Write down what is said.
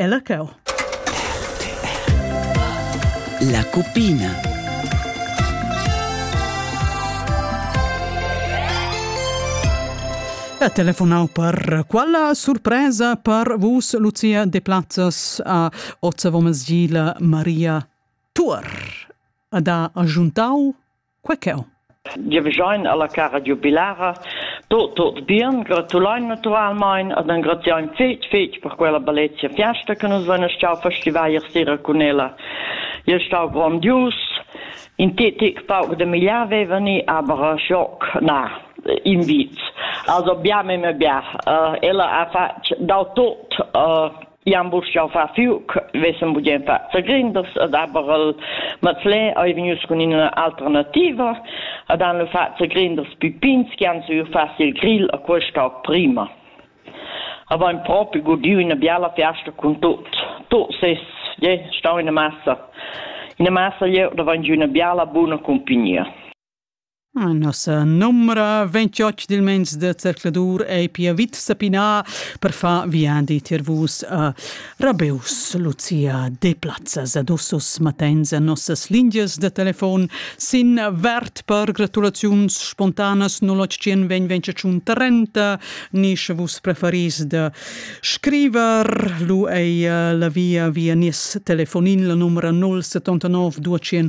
Ella cheu. La cuppina. Ha telefonau per quella surpresa per vus, Lucia de Plazzas a Ozza Vomesgila Maria Tuor. Ad ha agiuntau Quei cheu. Giavischein alla cara giubilara tot tot bien, gratulein naturalmein ad engraziein fetg fetg per quella bellezia fiasta che nus vein stau festivar ier sera cun ella. Il stau grondius, in tetic pauc de migliar vevani, aber schock, na, invit. Also bia me me bia. Uh, ella ha fatg dal tot uh, Iam bus jau fa fiu, vessen bugen fa zagrinders, ed aber el Mazlin ei vegnius cun ina alternativa, ed han lu fatg zagrinders pipins che han saviu far il grill a questa prima. Avain propi gudiu una biala fiasta con tot. Tot ses, je, stau in massa. In massa jeu da vain giu una biala buna compagnia. Nossa numra 28 dil mens de zercladur ei pia vit sapinà per far viadi tier vus a Rabeus, Lucia Deplazza Zadussus matens a nossas lingias de telefon sin vert per gratulaziuns spontanas 0800 2025 30 ni sche vus preferis de scriver lu ei la via via nies telefonin la numra 079 200